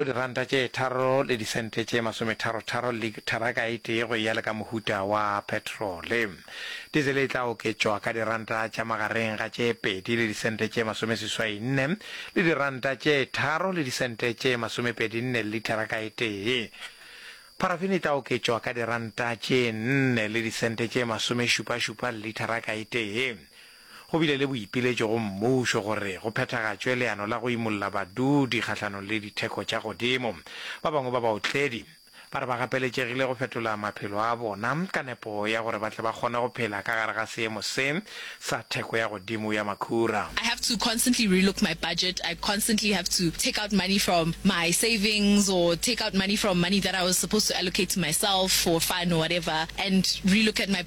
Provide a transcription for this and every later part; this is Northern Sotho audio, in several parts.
diranta tše tharo le disente tše masometharotharo litharaka e tee go eya le ka mohuta wa petrole. Dizele e tla oketšwa ka diranta tša magareng ga tše pedi le disente tše masomeseswainne le diranta tše tharo le disente tše masomepedinne le litharaka e tee. Pharafene e tla oketšwa ka diranta tše nne le disente tše masomešupašupa le litharaka e tee. Go bile le boipiletšo go mmušo gore go phethagatšwe leano la go imolla badudi kgahlanong le ditheko tša godimo. Ba bangwe ba baotledi ba re ba gapeletšegile go fetola maphelo a bona ka nepo ya gore ba tle ba kgone go phela ka gare ga seemo se sa theko ya godimo ya makhura. I have to constantly relook my budget, I constantly have to take out money from my savings or take out money from money that I was supposed to allocate to myself for fun or whatever and relook at my.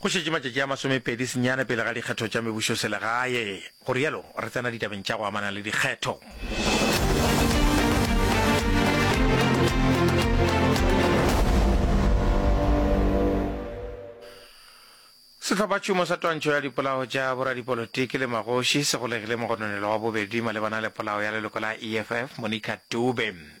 Go šetše matšatši a masomepedi senyane pele ga dikgetho tša mebušoselegae. Go rialo, re tsena ditabeng tša go amana le dikgetho. Sehlophatšhomo sa twantšho ya dipolao tša boradipolotiki le magoši se golegile mogononelo wa bobedi malebana le polao ya leloko la EFF, Monica Dube.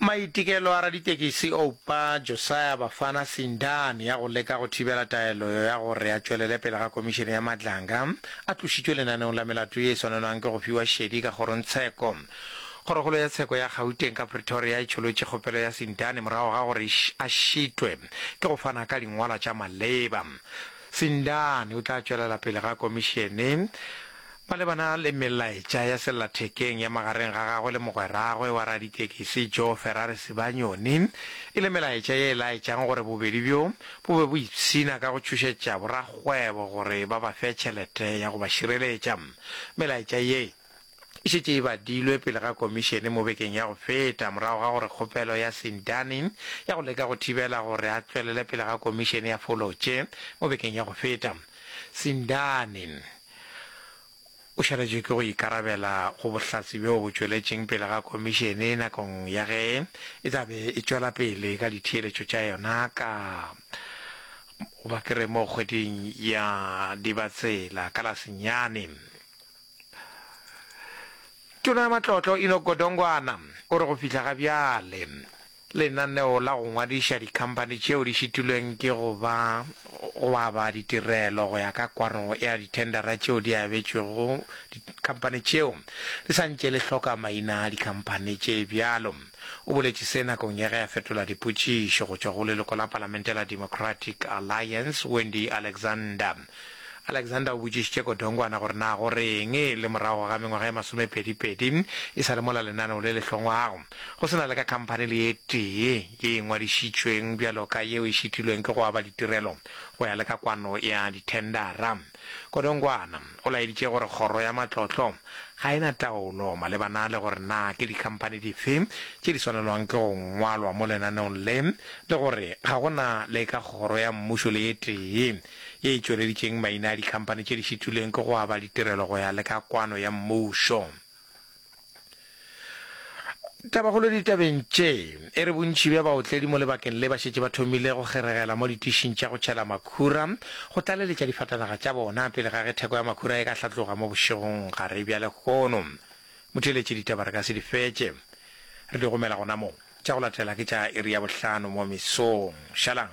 Maitekelo a raditekisi Oupa, Josiah Bafana Sindani ya go leka go thibela taelo ya gore a tšwelele pele ga Komišene ya Madlanga a tlošitšwe lenaneong la melato ye e swanelwang ke go fiwa šedi ka kgorongtsheko. Kgorokgolo ya tsheko ya Gauteng ka Pretoria e tšholotše kgopelo ya Sindani morago ga gore a šitwe ke go fana ka dingwalwa tša maleba. Sindani o tla tšwelela pele ga Komišene Malebana le melaetša ya sellathekeng ya magareng ga gagwe le mogweragwe wa raditekisi Joe Ferrari Sibanyoni, e le melaetša ye e laetšang gore bobedi bjo bo be bo ipshina ka go tšhošetša borakgwebo gore ba ba fe tšhelete ya go ba šireletša. Melaetša ye e šetše e badilwe pele ga komišene mo bekeng ya go feta morago ga gore kgopelo ya Sindani ya go leka go thibela gore a tšwelele pele ga komišene ya folotše mo bekeng ya go feta. Sindani. O swanetše ke go ikarabela go bohlatse bjoo bo tšweletšeng pele ga Komišene nakong ya ge e tla be e tšwela pele ka ditheeletšo tša yona ka goba ke re mo kgweding ya Dibatsela ka la senyane. Tona ya Matlotlo Enoch Godongwana o re go fihla ga bjale, Lenaneo la go ngwadiša dikhamphani tšeo di šitilweng ke go ba go aba ditirelo go ya ka kwano ya dithendara tšeo di abetšwego dikhamphani tšeo di sa ntše le hloka maina a dikhamphani tše bjalo. O boletše se nakong ya ge a fetola dipotšišo go tšwa go leloko la palamente la Democratic Alliance, Wendy Alexander. Alexander o botšišitše Godongwana gore na go re'ng le morago ga mengwaga e masomepedipedi e sa le mola lenaneo le le hlongwago. Go se na le ka khamphani le ye tee ye e ngwadišitšweng bjalo ka yeo e šitilweng ke go aba ditirelo go ya le ka kwano ya dithendara. Godongwana o laeditše gore kgoro ya matlotlo ga e na taolo malebana le gore na ke dikhamphani dife tše di swanelwang ke go ngwalwa mo lenaneong le le gore ga go na le ka kgoro ya mmušo le ye tee ye e tšweleditšeng maina a dikhamphani tše di šitilweng ke go aba ditirelo go ya le ka kwano ya mmušo. Tabagolo ditabeng tše e re bontši bja baotledi mo lebakeng le ba šetše ba thomile go kgeregela mo ditišing tša go tšhela makhura go tlaleletša difatanaga tša bona pele ga ge theko ya makhura e ka hlatloga mo bošegong gare bja lehono. Motheeletši ditaba re ka se di fetše re di romela gona mo. Tša go latela ke tša iri ya bohlano mo mesong. Šalang.